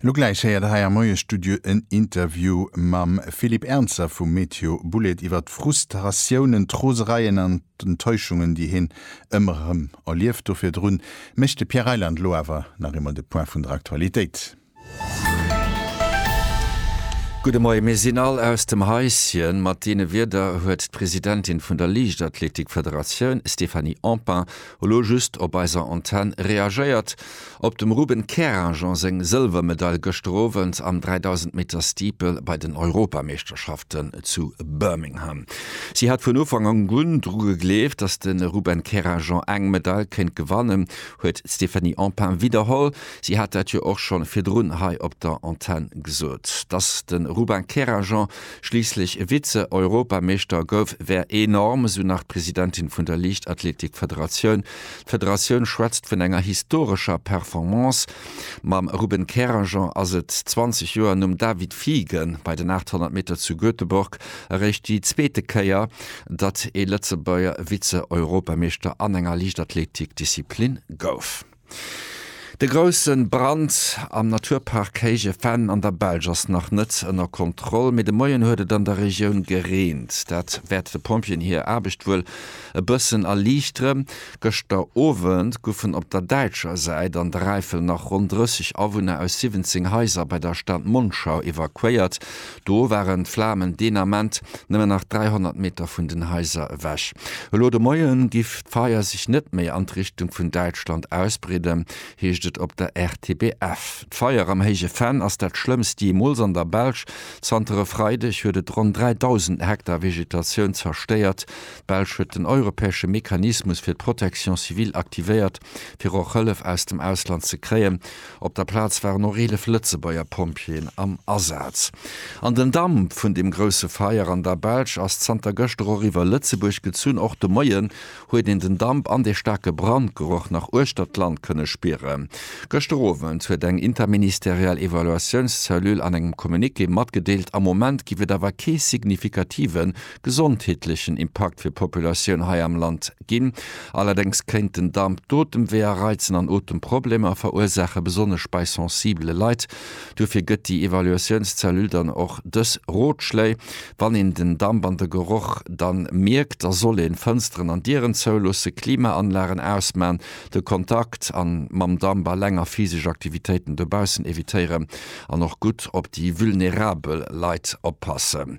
Elo gläich héiert der hei am Moiestudio en Interview mam Philippe Ernzer vu Meteo Boulét iwwer d'Frustratiounen, d'Rosereien an d'Enttäuschungen, déi hien ëmmer erëm erlieft. Do virdrun mécht de Pierre Reyland elo awer nach eemol de Point vun der Aktualitéit. Gudde Moie, mir sinn all aus dem Haischen. Mat deene Wierder huet d'Presidentin vun der Liichtathletik-Federatioun, Stéphanie Empain, Elo just op eiser Antenn reagéiert op dem Ruben Kerajan seng Sëlwermedail gëschter Owend am 3000 Meter Steeple bei den Europameeschterschaften zu Birmingham. Si hat vun Ufank un dru gegleeft, datt de Ruben Kerajan eng Medail kéint gewannen, huet d'Stéphanie Empain widderholl. Si hat dat jo och scho virdrun hei op der Antenn gesot, datt de Ruben Kerajan Schliisslech e Vize-Europameeschter gouf, wär enorm, esou nach d'Presidentin vun der Liichtathletik-Federatioun. D'Federatioun schwätzt vun enger historescher Performance. Mam Ruben Keranger ass et 20 Joer nom David Fiegen bei den 800 Meter zu Göteborg eréischt déi zweete Kéier, datt ee Lëtzebuerger Vize-Europameeschter an enger Liichtathletik-Disziplin gouf. De grousse Brand am Naturpark Kéijefenn an der Belsch ass nach net ënner Kontroll, mee de Moien huet et an der Regioun gereent. Dat wäert de Pompjeeën hir Aarbecht wuel e bëssen erliichteren. Gëschter Owend goufen op der däitscher Säit an der Äifel nach ronn 30 Awunner aus 17 Haiser bei der Stad Monschau evakuéiert. Do waren d'Flamen deen Ament nëmmen nach 300 Meter vun den Haiser ewech. Elo de Moien giff d'Feier sech net méi an d'Richtung vun Däitschland ausbreeden, heescht et op der RTBF. D'Feier am Héije Venn ass dat schlëmmst jeemools an der Belsch. Zanter e Freideg huet et ronn 3.000 Hektar Vegetatioun zerstéiert. D'Belsch huet den europäesche Mechanismus fir d'Protection civile aktivéiert, fir och Hëllef aus dem Ausland ze kréien. Op der Plaz waren och 11 Lëtzebuerger Pompjeeën am Asaz. An den Damp vun dem grousse Feier an der Belsch ass zanter gëschter och iwwer Lëtzebuerg gezunn. Och de Moien huet een den Damp an dee staarke Brandgeroch nach uechter d'Land kënne spieren. Gëschter Owend huet eng interministeriell Evaluatiouns-Cellule an engem Communiqué matgedeelt, am Moment géif et awer kee signifikativen gesondheetlechen Impakt fir d'Populatioun hei am Land ginn. Allerdéngs kéint den Damp d'Otemweeër reizen an Otemproblemer verursaachen, besonnesch bei sensibele Leit. Duerfir gëtt déi Evaluatiounscellule dann och dës Rotschléi, Wann een den Damp an de Geroch dann mierkt, da soll een Fënsteren an Dieren zouloossen, Klimaanlagen ausman, de Kontakt an mam Damp a länger physesch Aktivitéiten dobaussen evitéieren an och gutt op déi vulnerabel Leit oppassen.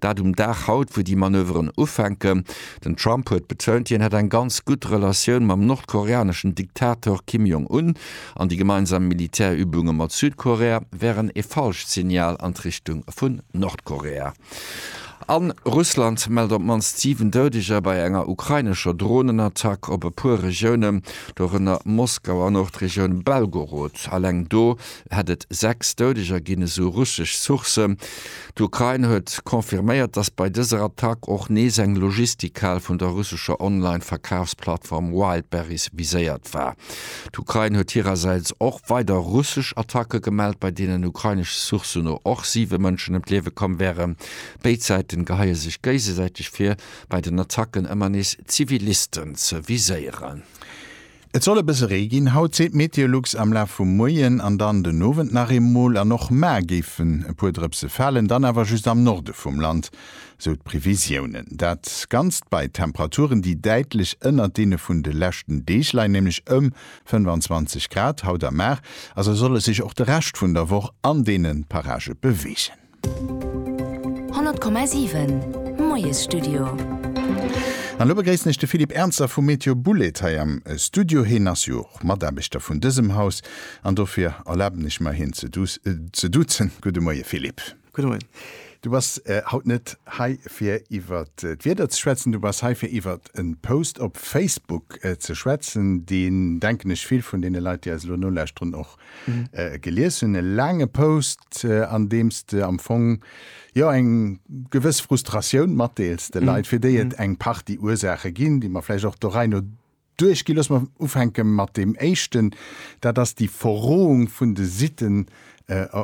Dat um Dag haut, wou déi Manöveren ufänken. Den Trump huet betount, hien hätt eng ganz gutt Relatioun mam nordkoreaneschen Diktator Kim Jong Un an déi gemeinsam Militärübunge mat Südkorea wären ee falscht Signal an d'Richtung vun Nordkorea. A Russland mellt op d'mannst 7 Doudeger bei enger ukrainescher Dronenattack op e puer Regiounen, dorënner Moskau an och d'Regioun Belgorod. Eleng do hätt et 6 Doudeger ginn, esou russesch Sourcen. D'Ukrain huet confirméiert, datt bei dëser Attack och nees eng Logistikhal vun der russescher Online-Verkafsplattform Wildberries viséiert war. D'Ukrain huet hirersäits och weider russesch Attacke gemellt, bei deenen ukrainesch Sourcen no och siwe Mënschen ëm d'Liewe komm wären. Béid Säiten geheie sech géigesäiteg vir, bei den Attacken ëmmer nees Zivilisten ze viséieren. Et soll e bësse Ree ginn haut, seet Meteolux, am Laf vum Moien an dann den Owend nach eemol. An och mar géifen e puer Drëpse falen, dann awer just am Norde vum Land, sou d'Previsiounen. Dat Ganzt bei Temperaturen, déi däitlech ënnert deene vun de leschten Deeg leien, nämlech ëm 25 Grad haut a mar. Also soll e sech och de Rescht vun der Woch an deene Parage beweegen. 100,7 Moiesstudio. An elo begréissen ech de Philippe Ernzer vu Météo Bouled hei am Studio. Heen ass jo och Mataarbechter vun dësem Haus an dofir erlaben ech mer hien ze duzen. Gudde Moie Philippe. Gudde Moien. Du bass haut net hei fir iwwer d'Wieder ze schwätzen, du bass hei fir iwwer en Post op Facebook ze schwätzen, deen denken ech vill vun deene Leit déi eis elo nolauschteren och gelies hunn, e laange Post, an deem s de am Fong jo eng gewëss Frustratioun matdeels de Leit, fir déi et eng Partie Ursaache ginn, déi mer vläicht och der Rei no duerchginn. Looss mer ufänke mat deem éischten, dat ass déi Verroung vun de Sitten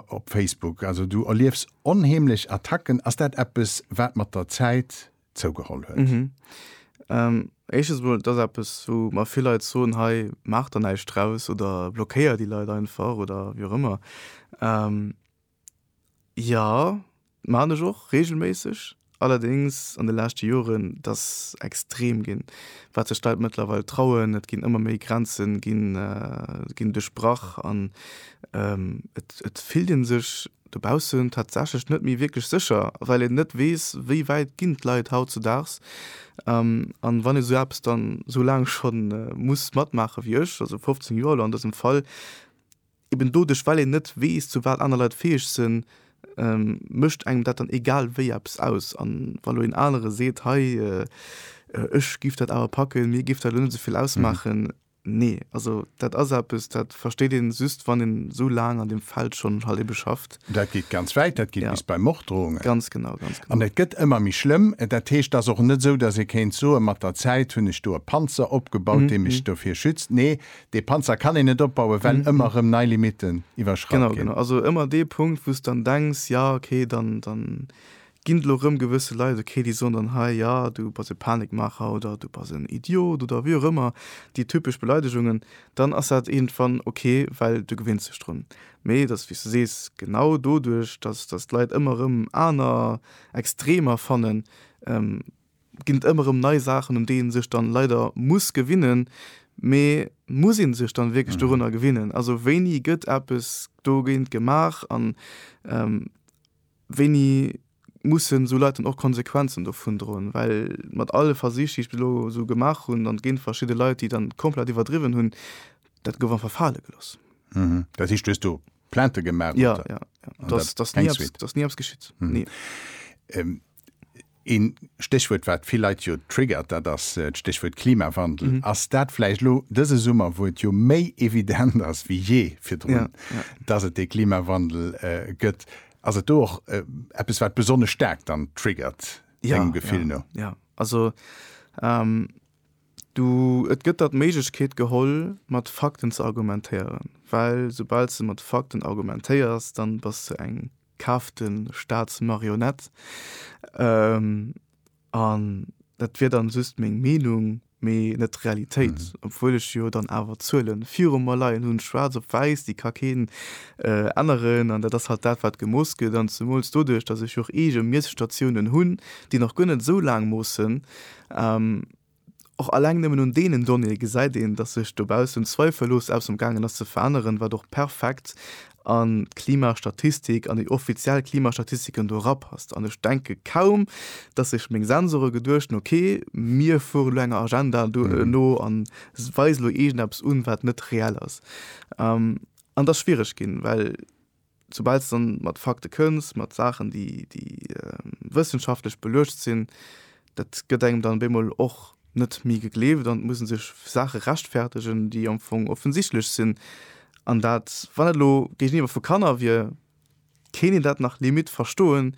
op Facebook. Also du erliefs onheemlech Attacken. Ass dat eppes, wat mat der Zäit zougeholl huet. Éischtens emol, et ass eppes, wou mer vill Leit soen, hei maacht der näischt draus oder blockéiert déi Leit einfach oder wéi och ëmmer. Jo, maachen ech och reegelméisseg, allerdéngs an de leschte Joren, et ass extrem ginn, wat sech d'Leit mëttlerweil trauen. Et ginn ëmmer méi Grenze ginn duerchbrach an et fillt ee sech Dobaussen tatsächlech net méi wierklech sécher, well een net weess, wéi wäit ginn d'Leit hautzedaags. An wann ee sou eppes dann sou laang scho muss matmaache wéi ech, also 15 Joer elo an dësem Fall, eben doduerch well een net weess, zu wat aner Leit fäeg sinn, mécht engem dat dann egal wéi eppes aus. An wa lo een anere seet, hei ech giff dat awer packen, mir giff dat elo net esou vill ausmaachen, Nee, also dat ass eppes, dat versteet een just, wann een esou laang an deem Feld schonn halt ebe schafft. Dat geet ganz wäit, dat geet bis bei Morddrohungen. Ganz genau, ganz genau. An et gëtt ëmmer méi schlëmm. Dat heescht, et ass och net esou, datt ee kéint soen, mat der Zäit hunn ech do e Panzer opgebaut, dee mech dovir schützt. Nee, dee Panzer kann een net opbauen, well ëmmer erëm nei Limitten iwwerschratt ginn. Genau, genau. Also ëmmer dee Punkt, wou s de dann denks, jo, okay, dann, dann Ginn elo rëm gewësse Leit okay, déi soen dann, Hei, jo, du bass e Panikmaacher oder du bass en Idiot oder wéi och ëmmer déi typesch Beleidegungen, dann ass dat iergendwann okay, well du gewinns dech drun. Mee et ass, wéi s de sees, genau doduerch, dass dass d'Leit ëmmer rëm aner Extremer fannen, ginn et ëmmer rëm nei Saachen, un déi ee sech dann leider muss gewinnen. Mee muss ee sech dann wierklech dorunner gewinnen? Also wéini gëtt eppes dogéint gemaach? An. Wéini mussen esou Leit dann och Konsequenzen dovun droen? Well mat alle Versich, déi ech bis elo esou gemaach hunn, an et ginn verschidde Leit, déi dann komplett iwwerdriwwen hunn, dat gouf einfach fale gelooss. Dat heescht, du hues do Plainte gemaach? Jo, jo, jo. An dat ass keng Suite? Dat ass ni eppes geschitt, ni. Een Stéchwuert wat vill Leit jo triggert, dat ass d'Stéchwuert Klimawandel. Ass dat vläicht elo dëse Summer, wou et jo méi evident ass wéi jee virdrun, dass et dee Klimawandel gëtt, ass et do och eppes wat besonnesch staark dann triggert dengem Gefill no? Jo, jo. Also do, et gëtt der d'Méiglechkeet geholl mat Fakten ze argumentéieren, well soubal s de mat Fakten argumentéiers, dann bass de eng. kaaft de Staat d'Marionette. An dat wier dann just meng Meenung, mee net d'Realitéit, obwuel ech jo dann awer d'Zuele viru mer leien hunn, schwaarz op wäiss, déi ka keen änneren. An dat ass halt dat, wat gemooss gëtt. An zemools doduerch, datt ech jo och eege Miesstatiounen hunn, déi nach guer net esou laang moossen, Och alleng nëmmen un deenen Donnéeë gesäit een, datt sech dobaussen zweifellos eppes am gaangen ass ze veränneren, wat och perfekt an d'Klimastatistik, an déi offiziell Klimastatistiken do erapasst. An ech denke kaum, datt sech meng Sensore geduecht hunn, okay, mir fueren elo enger Agenda no a weisen elo iergendeppes un, wat net reell ass. An et ass schwiereg ginn, well. Soubal s de dann mat Fakte kënns, mat Saachen, déi wëssenschaftlech beluecht sinn, dat gëtt engem dann op eemol och net méi gegleeft an et musse sech Saache rechtfertegen, déi am Fong offensichtlech sinn. An dat, wann et elo géigeniwwer vu Kanner wier, kéint een dat nach limite verstoen,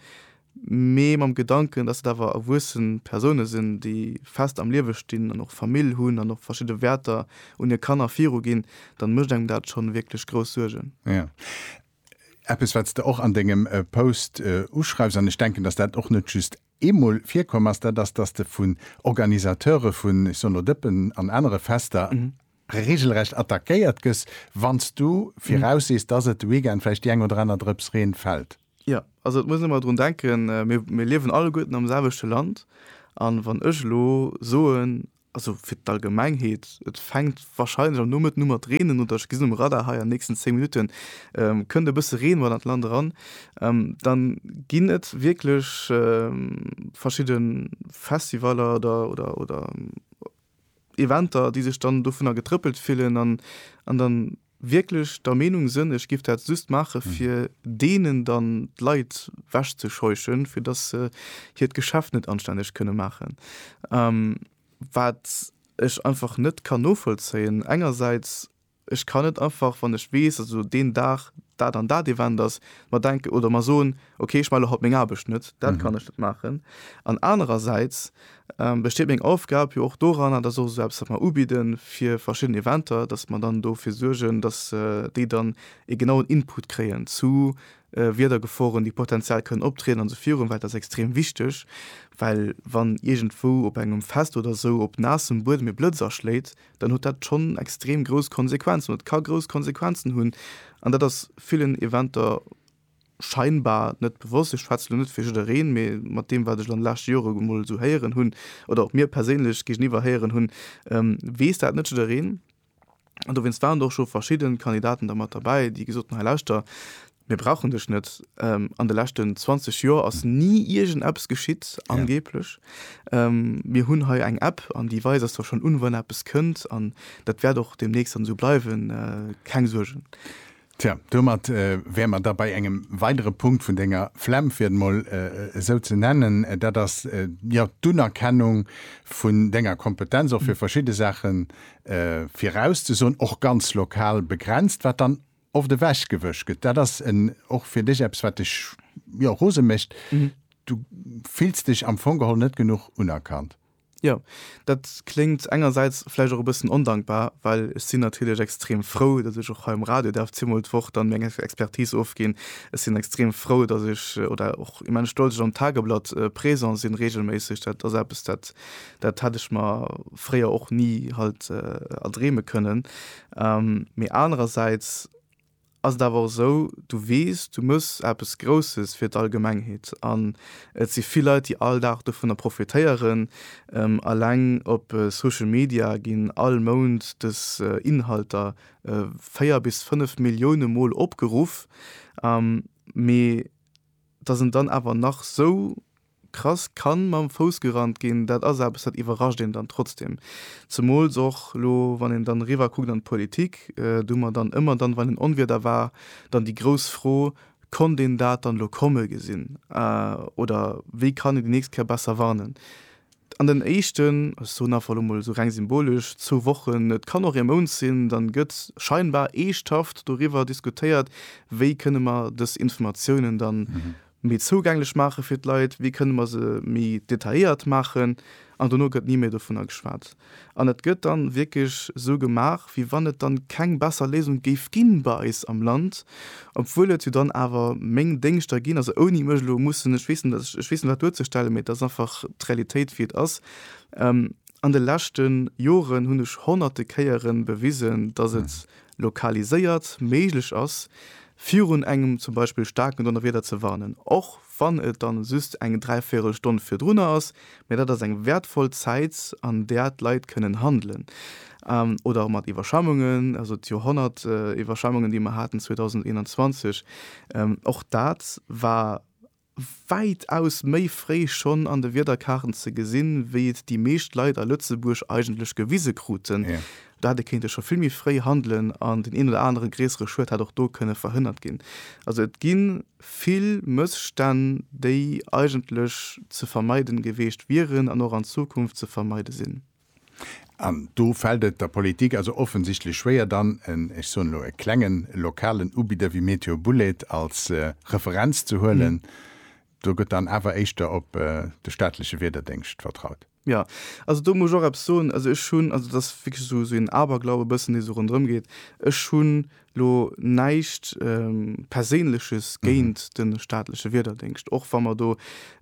mee mam Gedanken, dass et awer erwuessen Persoune sinn, déi fest am Liewe stinn an och Famill hunn an och verschidde Wäerter un hir Kanner viruginn, dann mécht engem dat schonn wierklech grouss Suergen. Jo, eppes wat s de och an dengem Post uschreifs, an ech denken, dass dat och net just eemol virkomm ass, dat ass, dass de vun Organisateure vun, ech soen elo, Dëppen an anere Fester reegelrecht attackéiert gëss, wann s du viraussees, dass et de Weekend vläicht déi eng oder aner Drëps Reen fält. Jo, also et muss een ëmmer drun denken, mir, mir liewen alleguerten am selwechte Land. A wann ech elo soen, also fir d'Allgemengheet, et fänkt wahrscheinlech am Nomëtten u mat reenen oder ech gesinn um Radar hei an de nächsten 10 Minutten kënnt e bësse Reen mat an d'Land eran, dann ginn et wierklech verschidde Festivaller oder, oder, oder Eventer, déi sech dann dovunner getrëppelt fillen an, an dann, wierklech der Meenung sënn, ech giff dat just maache fir deenen dann d'Leit wechzescheuchen, fir datt se hiert Geschäft net anstänneg kënne maachen. Wat ech einfach net kann novollzéien, engersäits, ech kann net einfach, wann ech weess, also deen Dag dat an dat Event ass, mer denken oder mer soen, ok ech male haut meng Aarbecht net, dat kann ech net maachen. An anerersäits besteet meng Aufgab jo och doran, an dat ass och esou eppes, wat mer ubidde fir verschidden Eventer, datt mer dann dofir suergen, datt déi dann ee genauen Input kréien zu Wiedergeforen, déi potenziell kënnen optrieden an esou virun, well dat ass extrem wichteg. Well wann iergendwou op engem Fest oder esou op naassem Buedem ee Blëtz aschléit, dann huet dat schonn extrem grouss Konsequenzen oder et ka grouss Konsequenzen hunn an dat ass villen Eventer, scheinbar net bewosst, ech schwätze lo net fir jiddereen, mee mat deem wat ech an de leschte Jore emol esou héieren hunn oder och mir perséinlech géigeniwwer héieren hunn, weess dat net jiddereen. An dowéinst waren och scho verschidden Kandidaten da mat derbäi, déi gesot hunn, hei lauschter, mir brauchen dech net, an de leschten 20 Joer ass ni iergend eppes geschitt, angeblech, mir hunn hei eng App an déi weist eis da schonn un, wann eppes kënnt an dat wäert och deemnächst dann esou bleiwen, keng Suergen. Tja, domat wäre mer da bei engem weidere Punkt vun Denger Flemm, fir et emol esou ze nennen, dat ass jo d'Unerkennung vun Denger Kompetenz, och fir verschidde Saache virauszesoen, och ganz lokal begrenzt, wat dann oft ewechgewësch gëtt. Dat ass och fir Dech eppes, wat Dech jo rose mécht. Du fills Dech am Fong geholl net genuch unerkannt. Jo, dat kléngt engersäits vläicht och e bëssen ondankbar, well ech sinn natierlech extrem frou, datt ech och hei um Radio däerf zweemol d'Woch dann meng Expertise ofginn. Ech sinn extrem frou, datt ech, oder och immens stolz, ech am Tageblatt présent sinn, reegelméisseg. Dat ass eppes, dat, dat hätt ech mer fréier och ni halt erdreeme kënnen. Mee anerersäits ass et awer och esou, du weess, du méchs eppes Grousses fir d'Allgemengheet an et si vill Leit, déi all Dag dovunner profitéieren. Eleng op Social Media ginn all Mount dës Inhalter véier bis fënnef Millioune Mol opgeruff, mee dass en dann awer nach esou Krass, kann mam Fouss gerannt ginn, dat ass eppes, dat iwwerrascht een dann trotzdem. Zemools och elo, wann een dann eriwwer kuckt an d'Politik, do hu mer dann ëmmer dann, wann en Onwieder war, dann déi grouss Fro, Konnt een dat dann elo komme gesinn oder wéi kann een déi nächst Kéier besser warnen? An den éischten, ech soen einfach elo mol esou reng symbolesch, zwou Wochen, et kann och ee Mount sinn, da gëtt scheinbar eeschthaft doriwwer diskutéiert, wéi kënne mer dës Informatiounen dann méi zougänglech maache fir d'Leit, wéi kënne mer se méi detailléiert maachen, an dono gëtt ni méi dovunner geschwat. An et gëtt da wierklech esou gemaach, wéi wann et da keng besser Léisung géif ginn bei eis am Land, obwuel et jo dann awer meng Déngschter ginn, also ouni mech elo mussen, ech weess net, ech weess net wat duerzestellen, mee et ass einfach d'Realitéit wéi et ass. An de leschte Joren hunn ech honnerte Kéiere bewisen, datt et lokaliséiert méiglech ass, virun engem zum Beispill staarken Donnerwieder ze warnen, och wann et dann just eng dräivierel Stonn virdrunner ass, mä dat ass eng wäertvoll Zäit, an där d'Leit kënnen handelen. Oder och mat Iwwerschwemmungen, also d'Joerhonnertiwwerschwemmungen, déi mer haten 2021, och dat war wäitaus méi fréi schonn an de Wiederkaarten ze gesinn, wéi et déi meescht Leit a Lëtzebuerg eigentlech gewise kruten. Do hätt ee kéinte scho vill méi fréi handelen an den een oder anere gréissere Schued hätt och do kënne verhënnert ginn. Also et gi vill Mësstänn, déi eigentlech ze vermeiden geweecht wieren an och an Zukunft ze vermeide sinn. An do fält et der Politik also offensichtlech schwéier, dann en, ech soen elo, e klengen lokalen Ubidder wéi Meteo Bouled als Referenz ze huelen. Do gëtt dann awer éischter op de staatleche Wiederdéngscht vertraut. Jo, also do muss ech och eppes soen. Also ech hunn, also dat ass wierklech esou en Aberglaube e bëssen, dee sou ronderëm geet, ech hunn Lo näischt Perséinleches géint de staatleche Wiederdéngscht, och wa mer do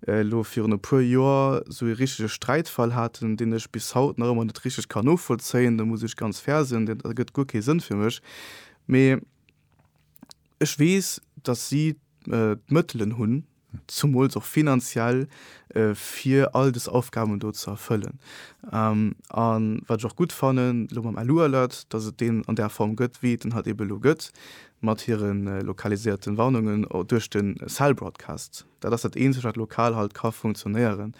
elo virun e puer Joer esou ee richtege Sträitfall haten, deen ech bis haut nach ëmmer net richteg kann novollzéien, do muss ech ganz fair sinn, dat ergëtt guer kee Sënn fir mech. Mee ech weess, datt si d'Mëttelen hunn, zumools och finanziell, fir all dës Aufgaben do ze erfëllen. A wat ech och gutt fannen elo mam Alu-Alert, dass et deen an där Form gëtt, wéi et en halt ebe elo gëtt, mat hire lokaliséierte Warnungen duerch de Cell Broadcast. Dat ass dat Eenzegt, wat lokal halt ka funktionéieren.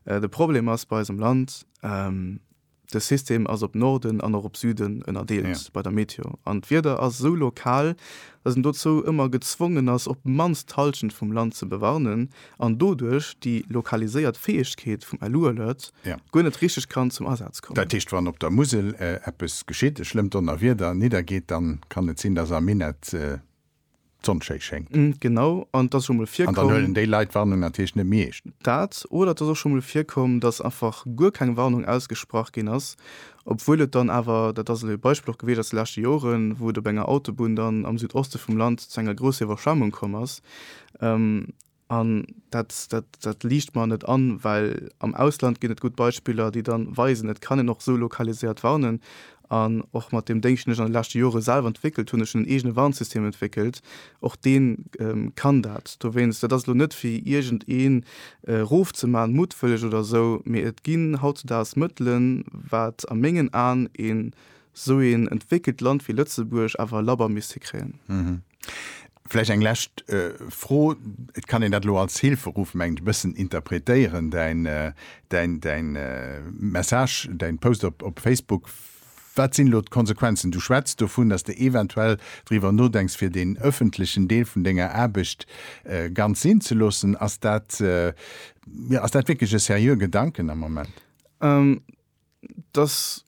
De Problem ass bei eis am Land, De System ass op Norden an och op Süden ënnerdeelt bei der Meteo an d'Wieder ass esou lokal, dass en dozou ëmmer gezwongen ass, op d'mannst d'Hallschent vum Land ze bewarnen an doduerch déi lokaliséiert Fäegkeet vum LU-Alert guer net richteg kann zum Asaz kommen. Dat heescht, wann op der Musel eppes geschitt, e schlëmmt Donnerwieder niddergeet, dann kann et sinn, dass am Minett d'Sonn schéi schéngt. Genau, an et ass scho mol virkomm. An dann huelen déi Leit d'Warnung natierlech net méi eescht. Dat, oder et ass och scho mol virkomm, dass einfach guer keng Warnung ausgesprach ginn ass, obwuel et dann awer, dat ass elo ee Beispill och gewiescht aus de leschte Joren, wou et op enger Autobunn dann am Südoste vum Land zu enger grousser Iwwerschwemmung komm ass. An dat, dat, dat liicht mer net an, well am Ausland ginn et gutt Beispiller, déi dann weisen, et kann een och esou lokaliséiert warnen. An och mat deem Déngscht, deen ech an de leschte Jore selwer entwéckelt hunn, ech hunn en eegene Warnsystem entwéckelt, och dee kann dat. Dowéinst, dat ass elo net fir iergendee rofzemalen, muttwëlleg oder esou, mee et ginn hautzudags Mëttelen, wat a mengen Aen een esou een entwéckelt Land wéi Lëtzebuerg awer labber misst hikréien. Vläicht eng lescht Fro, et kann een dat elo als Hilferuf, mengen ech, e bëssen interpretéieren, däin Message, däin Post op Facebook. Wat sinn elo d'Konsequenzen? Du schwätz dovun, datt s de eventuell driwwer nodenks, fir deen ëffentlechen Deel vun denger Aarbecht ganz sinn ze loossen. Ass dat wierklech e seriö Gedanken am Moment? dass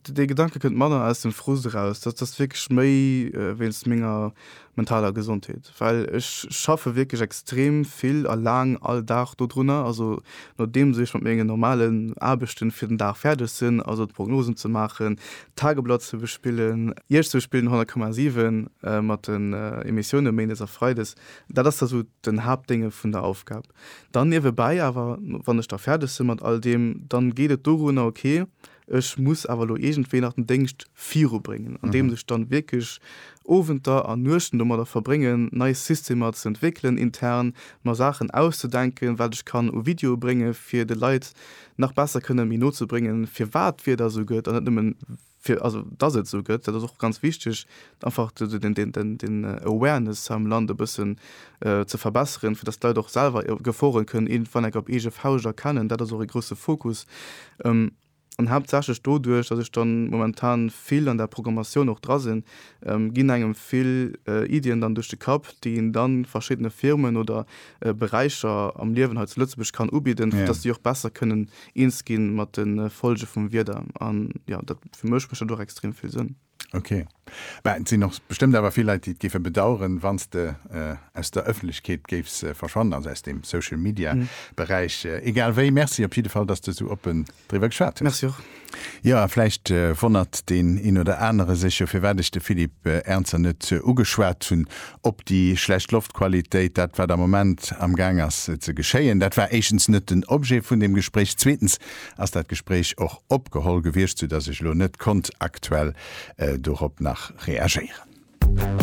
de dee Gedanke kënnt manner aus dem Frust eraus, dass dass wierklech méi wéinst menger mentaler Gesondheet, well ech schaffe wierklech extrem vill a laang all Dag dodrunner, also nodeems ech mat menge normalen Aarbechte fir den Dag fäerdeg sinn, also d'Prognosen ze maachen, d'Tageblatt ze bespillen, Iech ze bespillen, 100,7 mat den Emissioune méindes a freides, dat ass da sou den Haaptdénge vun der Aufgab. Dann niewebäi awer, wann ech da fäerdeg sinn mat all deem, dann geet et dorunner, ok, ech muss awer elo iergendwéi nach den Déngscht virubréngen, andeems ech dann wierklech Owenter an Nuechten domadder verbréngen, nei Systemer ze entwéckelen intern, mer Saachen auszedenken, wat ech kann u Videoe bréngen, fir de Leit nach besser kënnen méi no ze bréngen, firwat d'Wieder esou gëtt an net nëmmen, fir also dass et esou gëtt, dat ass och ganz wichteg, einfach den Awareness hei am Land e bëssen ze verbesseren, fir dass d'Leit och selwer Gefore kënnen iergendwann enk op eege Fauscht erkennen. Dat ass och e grousse Fokus an haaptsächlech doduerch, dass ech dann momentan vill an der Programmatioun och dra sinn, ginn engem vill Iddien dann duerch de Kapp, déi een dann verschiddene Firmen oder Beräicher am Liewen hei zu Lëtzebuerg kann ubidden, fir datt si och besser kënnen eens gi mat de Folge vum Wieder. An jo, dat, fir mech mécht dat och extrem vill Sënn. Ok. Mä et sinn och bestëmmt awer vill Leit, déi et géife bedaueren, wann s de aus der Ëffentlechkeet géifs verschwannen, also aus deem Social-Media-Beräich. Egal wéi, Merci op jidde Fall, datt s de esou oppen. Driwwer geschwat hues. Jo, a vläicht wonnert deen een oder anere sech jo, firwat ech de Philippe Ernzer net ugeschwat hunn op déi schlecht Loftqualitéit. Dat, wat am Moment amgaang ass ze geschéien, dat war éischtens net den Objet vun deem Gespréich. Zweetens ass dat Gespréich och opgeholl gewiescht, soudatt ech elo net konnt aktuell dorop nach reagéieren.